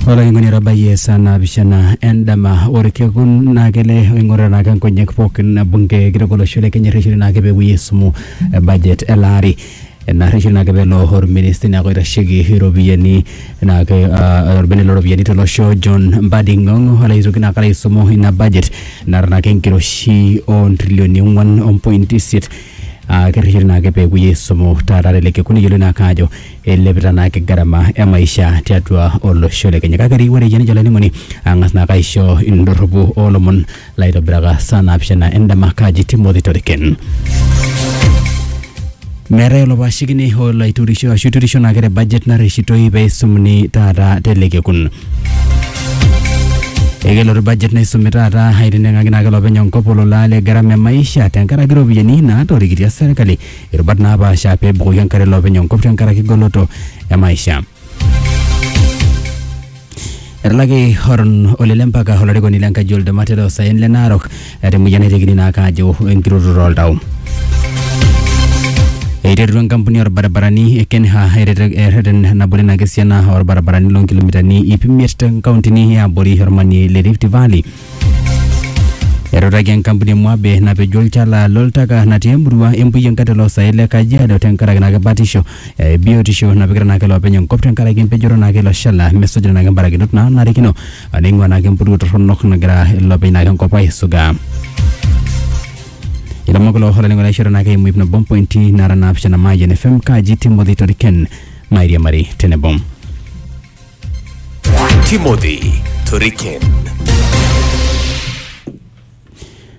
olainining'oni etabayie esaa naapishana endama orkekun naa kele oing'orita naake nkonyek pookin bunge kitok olosho le kenya erresheni naake peepuoi aisumu eh, budget ele ari ena rresheni naake peelo orministai naake oitasheki iropiyiani naake ah, orbene looropiyiani tolosho John Mbadi Ng'ong'o alo aitoki naake alo aisumu ina budget naata naake enkiroshi ontrilioni ong'uan ompointi isiet Ah, kerreshori naake peepuoi aisumu taata tele kekun eyioloi naake ajo eilepita naake gharama e maisha tiatua olosho le Kenya. Kake ri ore iyie nijo olainining'oni ang'as naake aisho indorropu oolomon laitobiraka saa naapishana endama kaji Timothy Toriken. Meetae olopashikini olo aiturisho ashu iturisho naake te budget narreshitoi peisumuni taata tele kekun. Ekelotu budget naisumi taata aitendeng'aki naake olopeny enkop olola le gharama e maisha tenkaraki iropiyiani naatorikitia serkali irubat naapaasha pee ebukoki enkare olopeny enkop tenkaraki goloto e maisha. Etalaki Horon Olele Mpaka olarikoni le nkaji oltemate loosaen le Narok eeta emoyian naitekini naake aajo enkirutoto oltau. Eiterutua enkampuni orbaribarani e Kenha erete- erreten nabore ina kisiana orbaribarani loo nkilomitani ip imiet te nkauntini e abori ormanie le Rift Valley. Etutaki enkampuni e Moabe napejo olchala loltaka natii emurua empuyian kata oloosaen le Kajiado tenkaraki ina kibatisho eh, biotisho napikita naake iloopeny enkop tenkaraki empejoto naake ilo shala mesujita naake mbarakinot naanarikino ah, neing'ua naake empuruo torronok nagira iloopeny naake enkop aisuga ilomon kulo olainingo naishoro naake eimu ip nabo mpointi nara naapishana Mayian FM kaji Timothy Toriken mairiamari tenebo Timothy Toriken.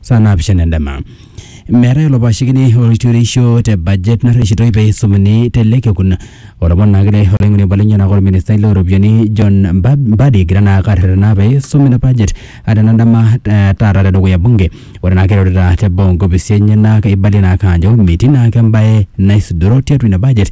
saa naapishana endama. Meetae olopashikini oltureisho te budget narreshitoi pee eisumuni te ele kekun. Etoponayioki naa olaing'oni obo lenyenak olministai loo ropiyiani John Mba- Mbadi egira naa ake arretena pee eisum ina budget aa tena dama eh, taata te dukuya bunge. Ore naa ake eirorita te boo onkopisi enyenak eibalie naa ake aajo metii naa ake embae naisudoro tiatua ina budget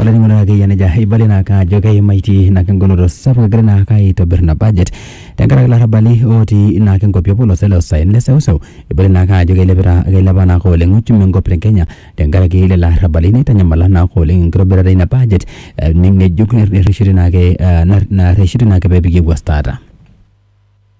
olainining'oni lai akeyie nejia eibalie naake ajo keimaitie naake engoloto sapuk egirai naake aitobir ina budget tenkaraki ilarrabali otii naake inkuapi opolosho le usain le seuseu ibala naake ajo keilepita keilepa naake oleng uchumi enkop e kenya tenkaraki lelo arrabali neitanyamala naake oleng enkitobirata ina budget eh, ng'ejuk nerreshiti naake eh, narreshiti naake pepiki ewuas taata.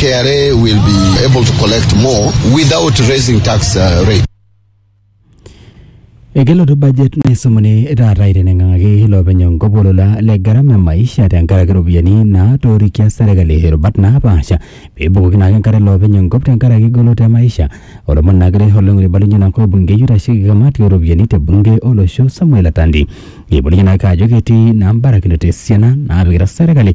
KRA will be able to collect more without raising tax uh, rate. Ekelotu budget naisumuni taata aiteng'aki iloopeny enkop olola le gharama e maisha tenkaraki iropiyiani naatorikia serkali irubat naapaasha peebukoki naake enkare iloopeny enkop tenkaraki goloto e maisha olomon naakire oleng oibalunye ina kop bungei oitasheki kamati ooropiyiani te bunge olosho Samuel Atandi eibalunye naake ajo ketii naa mbarakinoto esiana naapikita serkali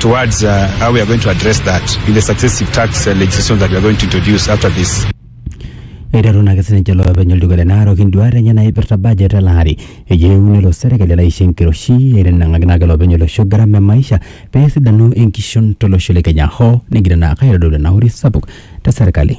towards uh, how we are going to address that in the successive tax uh, legislation that we are going to introduce after this. eiteru naake sininche iloopeny olduka le Narok induaat enye naipirta budget ele ari eyieu nelo serkali elaisho enkiroshi eitanang'aki naake iloopeny olosho gharama e maisha pee esidanu enkishon tolosho le Kenya hoo negira naake aitodolu enauri sapuk te serkali.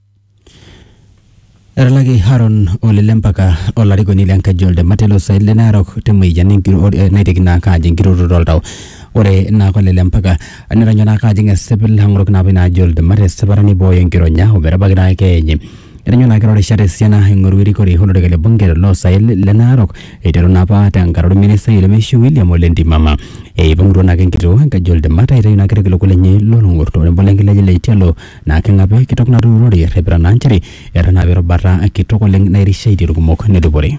Etalaki Haron ole lempaka olarikoni le nkaji oltemate lo saen le Narok te mueyian enkiroo eh, naiteki naa ake ajing enkiroroto oltau. Ore naa ole lempaka netonyo naa ake ajing esipil ang'orok naa apa ina aji oltemate esipata neibooyo enkironya ometabaiki naa keeya enye. Etonyo naa ake eeta irishat esiana aing'oru erikore o lorika le bunge loo saen le Narok eiteru naa apa te nkata orministai lemeishiu William ole Ntimama. Eipang'utua naa ake enkitoo enkaji oltemate aitayu naa ake irkiliku lenye loo long'ok tenebo le nkilej le Itialo naa keng'api kitok natuurori errepita naa nchere etanapi erubata kitok oleng nairishaitie irkumok nedupore.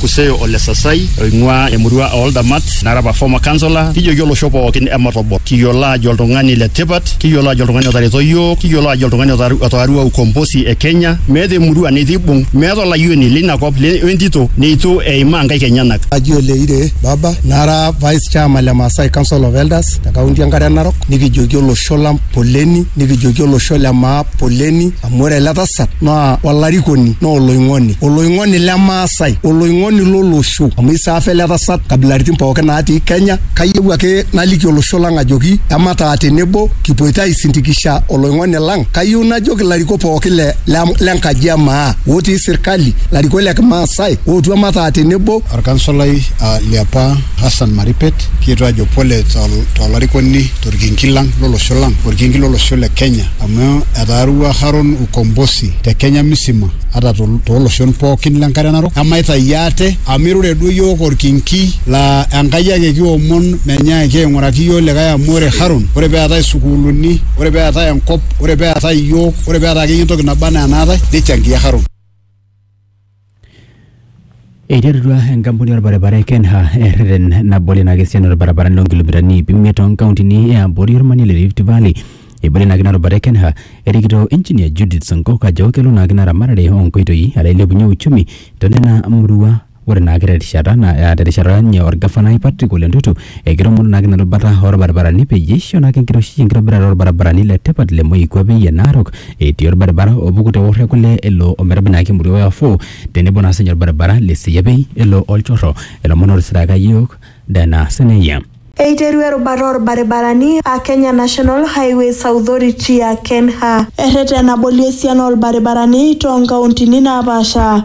Kuseo Ole Sasai oing'ua emurua oo Ldamat nara apa former councillor kijoki olosho pookin ematobol kiyiolo aajo oltung'ani le tipat kiyiolo aajo oltung'ani otareto iyiook kiyiolo aajo oltung'ani otaarua ukombosi e Kenya meeta emurua neitu eibung meeta olayioni leina kop o entito neitu eimaa inkaik enyenak. Aji Oleire Baba nara vice chairman le Maasai council of elders. te kaunti enkare narok nikijoki olosho lang poleni nikijoki olosho le maa poleni amu ore ele tasat naa olarikoni naa oloing'oni oloing'oni le maasai oloing'oni lolosho amu isaafa ele tasat kabilaritin pookin naatii kenya kayieu ake naliki olosho lang ajoki emataa tenebo kipuoito aisindikisha oloing'oni lang kayieu najoki ilarikok pookin le, le, le nkaji e maa otii sirkali larikok le kimaasai ootu emataa tenebo Olkansolai uh, liapa Hassan Maripet kietuo ajo pole tolarikoni to torkinki lang lolosho lang orkinki lolosho le Kenya amu etaarua Haron ukombosi te Kenya misima ata tooloshon pookin le nkare narok emaitayu ate amu irure duo iyiook orkinki laa Enkai ake kiomon menyaaki aing'uraki iyiook likae amu ore Haron ore peetae sukuuluni ore peetae enkop ore peetae iyiook ore peetae akeyie entoki naba enaa enaatae nichangia Haron. Eiterutua enkampuni orbaribara e Kenha erreten nabol ina kesian orbaribarani loo nkilomitani iip imiet too nkauntini e abori ormanie le Rift Valley. Ebore ina kinarubare e Kenha erikito engineer Judith Sonkok ajo kelo naa kina ramatare oo nkoitoi alo ailepunyie uchumi too nena murua. Ore naake te rishata naa te rishata ninye orgafanai Patrick Ole Ntutu Ekitoomono naake ina rubata oo lbarabarani peyie eisho naake enkiroshi enkitobirata oo lbarabarani le tipat le Moikuape ye Narok etii olbaribara opuku te Worre Kule elo ometabai naake emurua e Wafuu tenebo naa sininye olbaribara le Seiapei elo Olchorro. Ilomon ootisiraka iyiook Dana Seneia. Eiterua erubata oo lbaribarani aa Kenya National Highways Authority aa KENHA erreten abolie esiana oo lbaribarani too nkauntini naapaasha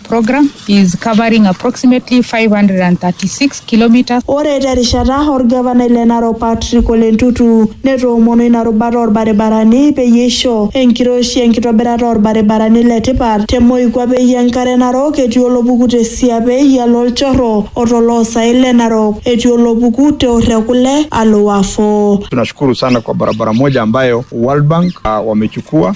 program is covering approximately 536 kilometers. Ore terishata orgavanai le Narok Patrick Ole Ntutu netoomono ina rubata orbaribarani peyie eisho enkiroshi enkitobirata orbaribarani le tipat te moikuapei e nkare Narok etii olopuku te siapei alo olchorro o to loosaen le Narok etii olopuku te orr e kule alo Wafo. Tunashukuru sana kwa barabara moja ambayo World Bank uh, wamechukua